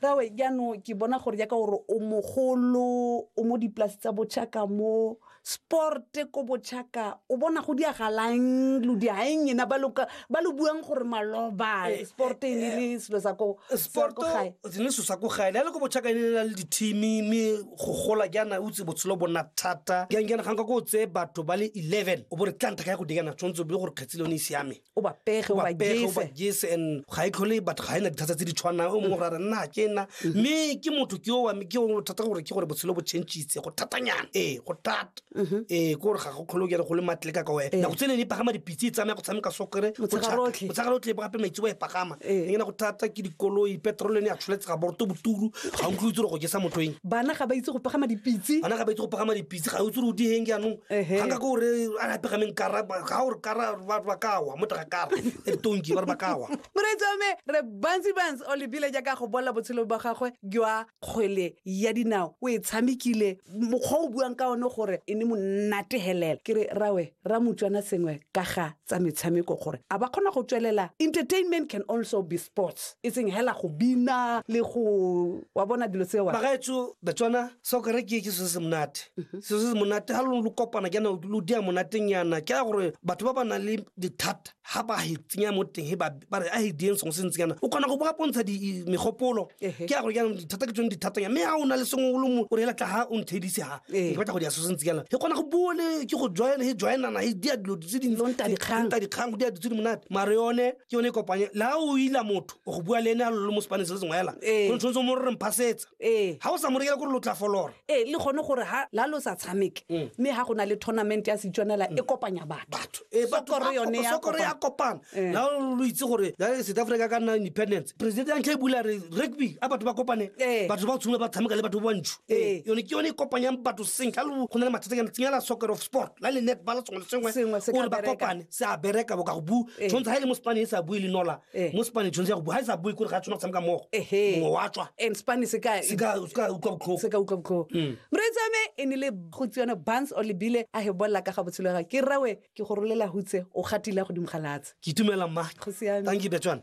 rawe jaanong ke bona gore jaaka gore o mogolo o mo dipolase tsa bochaka mo sporte ko bochaka o bona go diagalang lo diaeng ena ba lo buang gore maloba eh, sporte e ne le eh, selo sa ko gae ne selo sa ko gae le ko bochaka e ne le dithimi mme go gola jaana o tse botshelo bona thata jang jaana ga nka ko o tseye batho ba le eleven o bo re tla nthaka ya go dikana tshwanetse o bile gore kgetsile o ne e siame o ba pege o ba jese and ga e tlhole batho ga e na dithata tse di tshwanang o mongwe gore nna ke nna mme ke motho ke owa ke o thata gore ke gore botshelo bo changitse go thatanyana ee go thata ee ke gore ga go tlhole kere go le matle ka ka wena nako tse ne ne pagama dipitse e tsamaya go tshameka sokere motshegarotlhe gape maitse wa e pagama Ee. ngena go thata ke dikoloi petrol ne ya tsholetse ga borto boturu ga utlwe itse gore go jesa motho eng bana ga ba itse go pagama dipitse bana ga ba itse go pagama dipitse ga utse re o diheng jaanong Ehe. ga nka ko gore a re pegameng kara ga gore kara ba ba kawa mo taga kara e tonki ba re ba kawa moreetsame re bantsi bantsi o lebile jaaka go bolela botshelo ba gagwe jwa kgwele ya dinao o e tshamekile mokgwa o buang ka one gore e ne monategelela ke re rawe ra motswana sengwe ka ga tsa metshameko gore a ba kgona go tswelela entertainment can also be sports e seng hela go bina le go wa bona dilo tsewa bagaetso batswana sa kare ke ke se se monate mhm. se se monate ga lo kopana ke na lo dia monateng yana ke ya gore batho ba ba nang le dithata ga ba e tsenya mo teng ba re a e dieng sengwe se ntseng yana o kgona go bo pontsha megopolo ke ya gore jaanong dithata ke tsone dithatanya mme ga o na le sengwe o le mo o re elatla ga o nthedise ga ke batla go dia so se ntseng yana e kgona go bua le ke go join e joinana e dia dilo tse dintanta dikgang go dia dilo tse di monate mare yone ke yone e kopanye la o ila motho o go bua le ene a lo le mo sepaneng se le sengwe fela go tshwanetse mo re re mphasetsa ga o sa mo rekela gore lo tla folora ee le gone gore ha la lo sa tshameke mme ha go na le tournament ya setswanela e kopanya batho Eh, batho Sokoro ba- yone ya sokoro ya kopana. kopana Eh. la lo itse gore la re south africa ka nna independence president ya ntlha e bula re rugby a batho ba kopane Eh. batho ba tshumela ba tshameka le batho ba bantsho Eh. yone ke yone e kopanyang batho seng ka lo go na le mathata kana tsenya la soccer of sport la le netball sengwe le Sengwe sengwe se ka gore ba bereka. kopane se a bereka boka go bu Eh. tshwanetse ga e le mo spaneng e sa bue le nola Eh. mo spane tshwanetse ya go bua ga e sa bue kore ga a tshwana go tshameka mmogo Ehe. mongwe wa tswa and spane se ka se ka se ka utlwa botlhoko se ka utlwa botlhoko Mm. mretsame e ne le go tsione bans o lebile a he bolla ka ga botshelo ga ke rawe ke go rolela hutse o gatile godimo ga latse ke itumela mma Go siame. thank you betswana